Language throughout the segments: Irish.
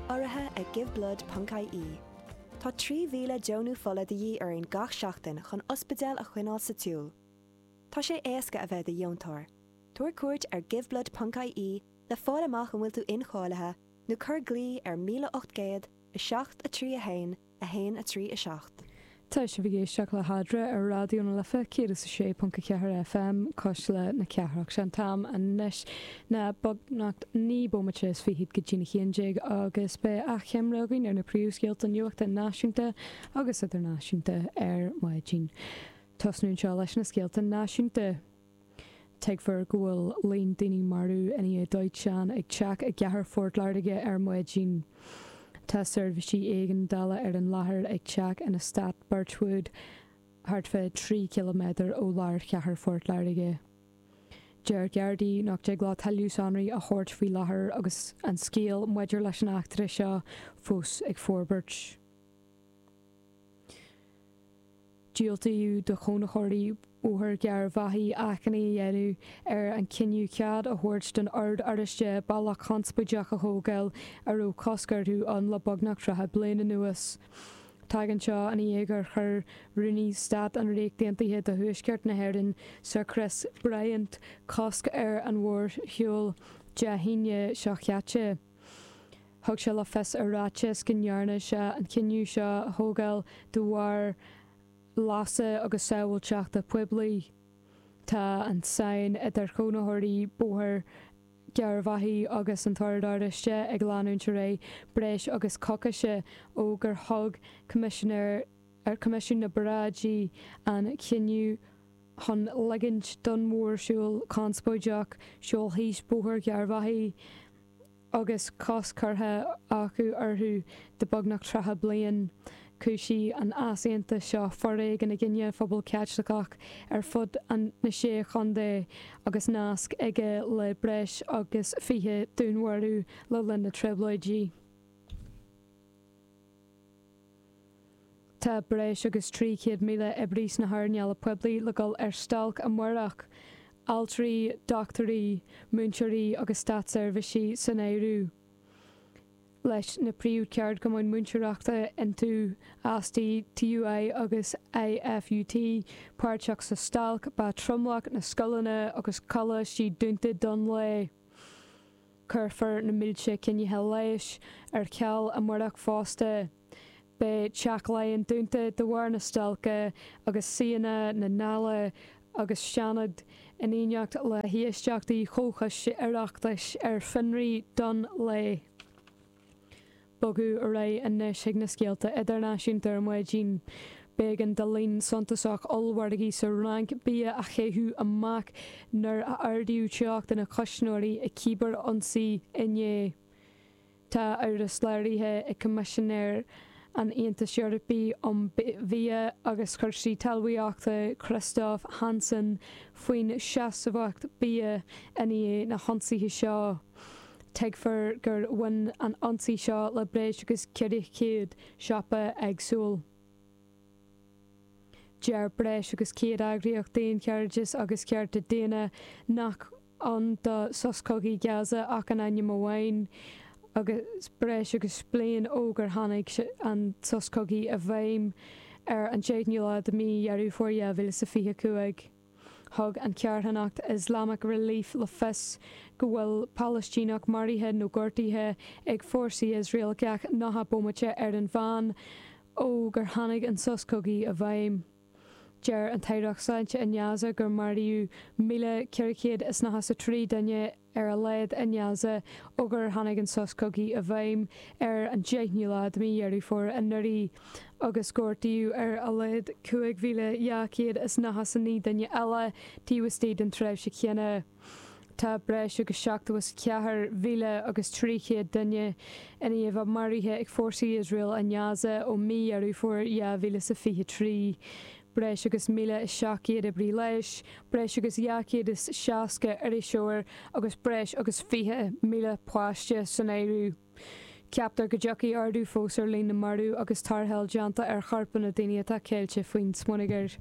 Urraithe ag Giveblood ponc IE, Tá 3,000 deonú fola de dhíth orainn gach seachtain chun ospidéil a choinneáil sa tsiúl. Tá sé éasca a bheith i do dheontóir. Tabhair cuairt ar Giveblood ponc IE le fáil amach an bhfuil tú incháilithe nó cuir glaoigh ar 1800 7 3 1 1, 3, 7. Tá sibh ag éisteacht le hAdhradh ar Raidió na Life 106.4 FM, Cuisle na Cathrach. Sé an t-am anois ná beagnach naoi bomaite is fichid go dtína haon déag agus beidh achoimre againn ar na príomhscéalta nuachta náisiúnta agus idirnáisiúnta ar maidin. Tosnú anseo leis na scéalta náisiúnta. Tuigtear go bhfuil líon daoine marbh i ndiaidh dóiteáin ag teach i gCathair Phort Láirge ar maidin. Tá seirbhísí éigeandála ar an láthair ag teach in eastát Birchwood thart fá trí chiliméadar ó lár Chathair Phort Láirge. Deir Gardaí nach dtig leo tuilleadh sonraí a thabhairt faoi láthair agus an scéal maidir leis an eachtra seo fós ag forbairt. Diúltaíodh do chónaitheoirí Bhóthar Gharbhachaidh achainí a dhéanamh ar an cinneadh cead a thabhairt don Ord Oráisteach bealach conspóideach a thógáil a raibh cosc orthu ann le beagnach 30 bliain anuas. Tagann seo i ndiaidh gur chuir Rúnaí Stáit an Ríocht Aontaithe do Thuaisceart na hÉireann, Sir Chris Bryant, cosc ar an mhórshiúl Dé hAoine seo chaite. Thug sé le fios i ráiteas go ndearna sé an cinneadh seo a thógáil de bharr leasa agus sábháilteachta poiblí. Tá an tsáinn idir chónaitheoirí Bhóthar Gharbhachaidh agus an tOrd Oráisteach ag leanúint ar aghaidh breis agus coicís ó gur thug Coimisinéir, Coimisiún na bParáidí an cinneadh chun ligint don mhórshiúl conspóideach siúl síos Bóthar Gharbhachaidh agus cosc curtha acu orthu do beagnach tríocha bliain. Chúisigh an t-easaontas seo foréigean i gcoinne an phobail Chaitlicigh ar fud na Sé Chontae agus nasc aige le breis agus fiche dúnmharú le linn na dTrioblóidí. Tá breis agus 300,000 oibrí sna hearnála poiblí le dhul ar stailc amárach, altraí, dochtúirí, múinteoirí agus státseirbhísigh san áireamh, leis na príomhcheardchumainn múinteoireachta INTO, ASTI, TUI agus IFUT, páirteach sa stailc. Beidh tromlach na scoileanna agus coláistí dúnta don lá. Cuirfear na mílte coinní leighis ar ceal amárach fosta. Beidh Teach Laighean dúnta de bharr na stailce agus suíonna na nDála agus Seanad, in éineacht le héisteachtaí Chomhchoiste Oireachtais ar fionraí don lá. Bogadh ar aghaidh anois chuig na scéalta idirnáisiúnta ar maidin. B'éigean do líon suntasach ollmhargaí sa Fhrainc bia a chaitheamh amach nuair a ardaíodh teocht ina gcuisneoirí i cibearionsaí inné. Tá amhras léirithe ag Coimisinéir an Aontais Eorpaigh um Bhia agus Cúrsaí Talmhaíochta Christophe Hansen faoin seasmhacht bia i ndiaidh na hionsaithe seo. Tuigtear gur bhain an ionsaí seo le breis agus 400 siopa éagsúil. Deir breis agus 100 eagraíocht daonchairdis agus cearta daonna nach ann do sos cogaidh Gaza ach in ainm amháin, agus breis agus bliain ó gur tháinig an sos cogaidh i bhfeidhm ar an 10ú lá de mí Dheireadh Fómhair 2025. Thug an charthanacht Islamic Relief le fios go bhfuil Palaistíneach maraithe nó gortaithe ag fórsaí Iosrael gach nócha bomaite ar an mheán ó gur tháinig an sos cogaidh i bhfeidhm. Deir an tAireacht Sláinte i nGaza gur maraíodh míle ceithre chéad is nócha 's a trí duine ar a laghad i nGaza ó gur tháinig an sos cogaidh i bhfeidhm ar an 10ú lá de mí Dheireadh Fómhair anuraidh agus gortaíodh ar a laghad 5,299 duine eile taobh istigh den tréimhse chéanna. Tá breis agus 74,000 agus 300 duine i ndiaidh a maraithe ag fórsaí Iosrael i nGaza ó mí Dheireadh Fómhair 2023. breis agus 1,700 oibrí leighis, breis agus 260 iriseoir agus breis agus 20,000 páiste san áireamh. Ceaptar go dtiocfaidh ardú fós ar líon na marbh agus tarrtháil déanta ar chorpáin na daoine atá ceilte faoin smionagar.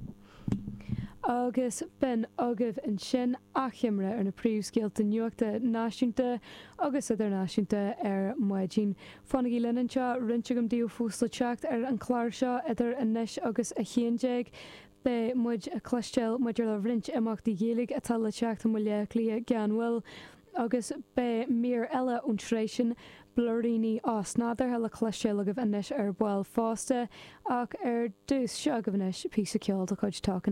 Agus b'in agaibh ansin achoimre ar na príomhscéalta nuachta náisiúnta agus idirnáisiúnta ar maidin Fanaigí linn anseo roinnt agam daoibh fós le teacht ar an chlár seo idir anois agus a haon déag. Beidh muid ag cloisteáil maidir le roinnt imeachtaí Ghaeilge atá le teacht i mBaile Átha Cliath gan mhoill agus beidh mír eile ón tsraith sin, Blúiríní Osnádúrtha le cloisteáil agaibh anois ar ball fosta. Ach ar dtús, seo agaibh anois píosa ceoil de chuid Talking.